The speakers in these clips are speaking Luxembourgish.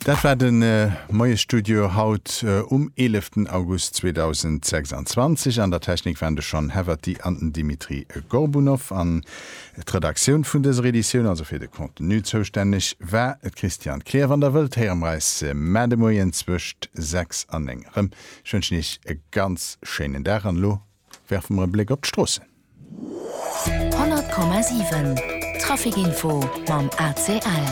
Dat war de Moiesstudio haut um 11 August 2026. An der Technik waren de Sean Heverty an den Dimitri Gorbunov. An d'Redaktioun vun dëser Editioun, also fir de Contenu zoustänneg, war d'Christiane Kleer. Wann der wëllt, héiere mer eis mar de Moien zwëscht 6 an 9 erëm. Ech wënschen Iech e ganz schéinen Dag an elo Werfe mer e Bléck op d'Stroossen. 100,7 Trafic Info mam ACL.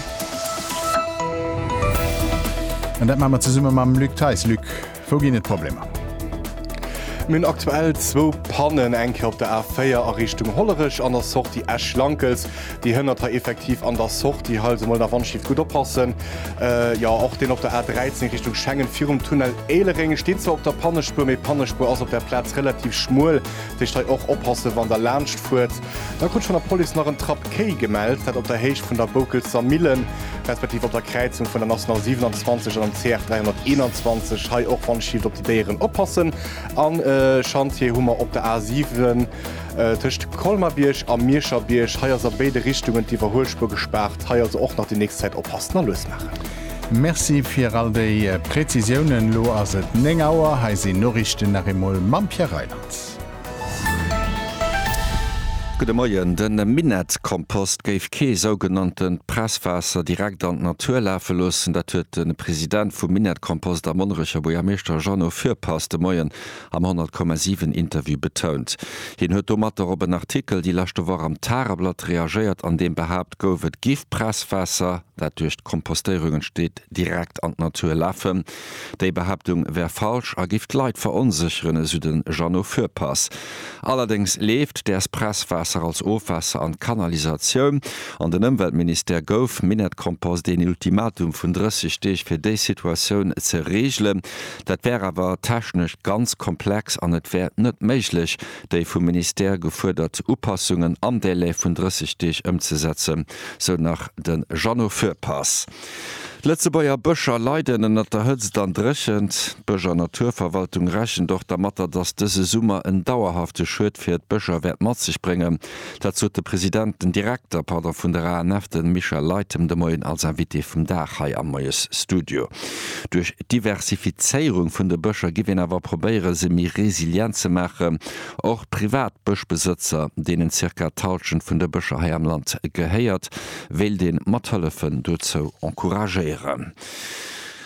An dat maache mer zesumme mam Luc Theis. Luc, wou ginn et Problemer? Mir hunn aktuell zwou Pannen, eng Kéier op der A4 a Richtung Hollerech an der Sortie Esch-Lankelz. Déi Hënn hat hei effektiv an der Sortie hei also mol nach wannschifft gutt oppassen. Jo och deen op der A 13 Richtung Schengen virum Tunnel Éilereng steet zwar op der Pannespuer, mee Pannespuer ass op der Plaz relativ schmuel, dat heescht hei och oppassen wann der laanscht fuert. Da krut ech vun der Police nach en Trapp Kéi gemellt, dat op der Héicht vun der Boukelser Millen, respektiv op der Kräizung vun der National 27 an dem CR 321. Hei och wannschifft op déi Déieren oppassen. An Schantjee hu mer op der A 7. Tëscht Colmar-Bierg a Mierscher-Bierg, hei ass a béide Richtungen d'Iwwerhuelspuer gespaart. Hei also och nach déi nächst Zäit oppassen a lues maachen. Merci fir all déi Präzisiounen. Elo ass et 9 Auer, hei sinn d'Noriichten nach eemol mam Pierre Reyland. Gudde Moien. De Minett-Kompost géif kee sougenanntent Presswaasser direkt an d'Natur lafe loossen. Dat huet de President vum Minett-Kompost a Monnerecher Buergermeeschter Jeannot Fürpass de Moien am 100, 7 Interview betount. Hien huet domatter op en Artikel déi leschte Woch am Tageblatt reagéiert, an deem behaapt gouf, et giff Presswaasser, dat duerch d'Kompostéierung entsteet, direkt an d'Natur lafen. Déi Behaaptung wär falsch a giff d'Leit veronsécheren, esou de Jeannot Fürpass. Allerdéngs leeft däers Presswaasser als Ofwaasser an d'Kanalisatioun. An den Ëmweltministère gouf Minett Kompost een Ultimatum vun 30 Deeg fir déi Situatioun ze reegelen. Dat wär awer technesch ganz komplex an et wär net méiglech, déi vum Ministère gefuerdert Upassungen am Délai vun 30 Deeg ëmzesetzen, sou nach de Jeannot Fürpass. D'Lëtzebuerger Bëscher leiden ënnert der Hëtzt an Dréchent. D'Bësch a Naturverwaltung rechent och dermatter, datt dëse Summer en dauerhafte Schued fir d'Bëscher wäert mat sech bréngen. Dat sot de President, den Direkter, pardon, vun der ANF, de Michel Leytem, de Moien als Invité vum Dag hei am Moiesstudio. Duerch d'Diversifizéierung vun de Bëscher giff een awer probéiere se méi resilient ze maachen. Och privat Bëschbesëtzer, deenen zirka d'Halschent vun de Bëscher hei am Land gehéiert, wéilt ee mathëllefen dozou encouragéieren.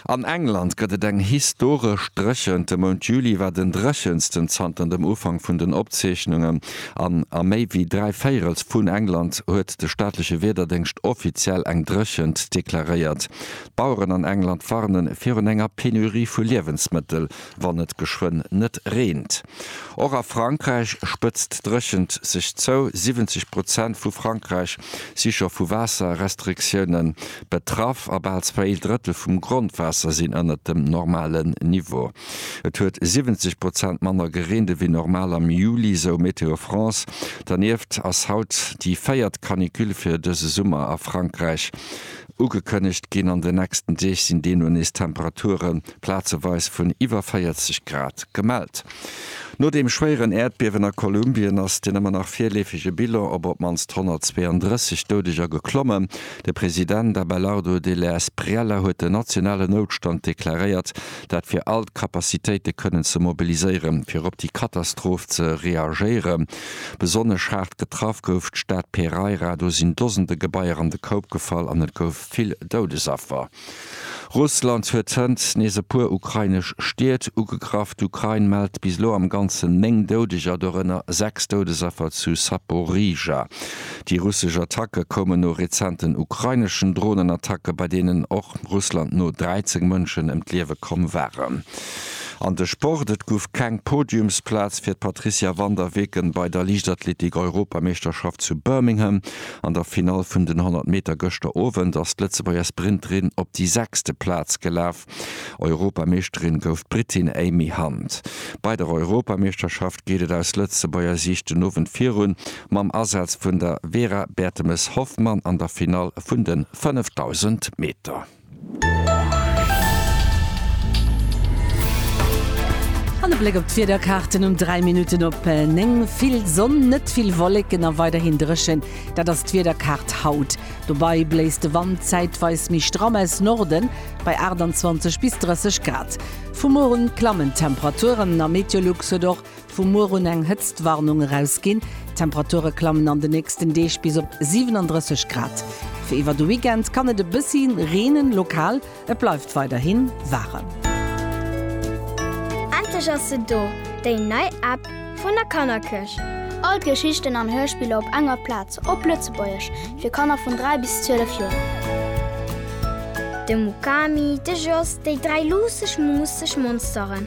An England gëtt et eng historesch dréchent. De Mount Juli war den dréchensten zanter dem Ufank vun den Opzeechnungen an a méi wéi dräi Véirels vun England huet de staatleche Wiederdéngscht offiziell eng Dréchent deklaréiert. D'Baueren an England warnen virun enger Penurie vu Liewensmëttel, wann et geschwënn net reent. Och a Frankräich spëtzt d'Dréchent sech zou. 70 Prozent vu Frankräich si scho vu Waasserrestriktioune betraff a bal zwéi Drëttel vum Grondwaasser sinn ënnert dem normalen Niveau. Et huet 70 Prozent manner gereent ewéi normal am Juli, sou Météo France. Dernieft ass haut déi véiert Canicule fir dëse Summer a Frankräich. Ugekënnegt ginn an den nächsten Deeg sinn deemno nees Temperature plazeweis vun iwwer 40 Grad gemellt. No deem schwéieren Äerdbiewen a Kolumbien ass den ëmmer nach virleefege Bilan op op d'mannst 132 Doudeger geklommen. De President Abelardo Della Espriella huet den nationalen Noutstand deklaréiert, dat fir all d'Capacitéite kënnen ze mobiliséieren, fir op déi Katastroph ze reagéieren. Besonnesch haart getraff gouf d'Stad Pereira. Do sinn Dosende Gebaier an de Koup gefall an et gouf vill Doudesaffer. Russland huet hënt nees e puer ukrainesch Stied ugegraff. D'Ukrain mellt bis elo am Ganzen 9 Doudeger, dorënner 6 Doudesaffer zu Saporizhzhia. Déi russesch Attacke koumen no rezenten ukraineschen Dronenattacke, bei deenen och Russland no 13 Mënschen ëm d'Liewe komm waren. An de Sport, Et gouf keng Podiumsplaz fir d'Patricia van der Weken bei der Liichtathletik-Europameeschterschaft zu Birmingham. An der Finall vun den 100 Meter gëschter Owend ass d'Lëtzebuerger Sprinterin op déi sechste Plaz gelaf. Europameeschterin gouf d'Britin Amy Hunt. Bei der Europameeschterschaft geet et aus Lëtzebuerger Siicht den Owend virun mam Asaz vun der Vera Bertemes-Hoffmann an der Finall vun de 5000 Meter. An e Bléck op d'Wiederkaarten um 3 Minutten op 9. Vill Sonn, net vill Wolleken a weiderhin dréchen, dat ass d'Wiederkaart haut. Dobäi bléist de Wand zäitweis méi stramm aus Norden bei 28 bis 30 Grad. Vu muer un klammen d'Temperaturen a Meteolux huet och Vu muer un eng Hëtztwarnung erausginn. D'Temperature klammen an de nächsten Deeg bis op 37 Grad. Fir iwwer de Weekend kann et e bëssi reenen, lokal. Et bleift weiderhi waarem. Endlech ass se do, déi nei App vun der Kannerkëch! All d'Geschichten an Hörspiller op enger Plaz, op Lëtzebuergesch, fir Kanner vun 3 bis 12 Joer. De Mukami, de Jos, déi dräi luusseg, muusseg Monsteren.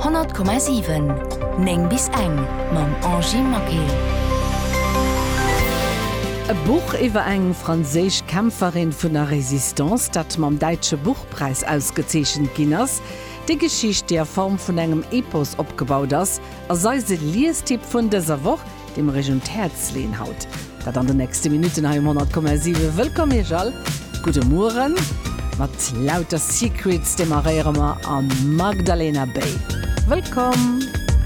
100,7 9 bis eng mam Angie Maquet. E Buch iwwer eng franséisch Kämpferin vun der Resistance, dat mam Däitsche Buchpräis ausgezeechent ginn ass. Déi Geschicht, déi a Form vun engem Epos opgebaut ass, ass eise Liestipp vun dëser Woch. Dee mer Iech un d'Häerz leeën haut dat an de nächste Minutten hei um 100,7. Wëllkomm Iech all, gudde Mueren mat lauter Secrets demarréiere mer an Magdalena Bay. Wëllkomm!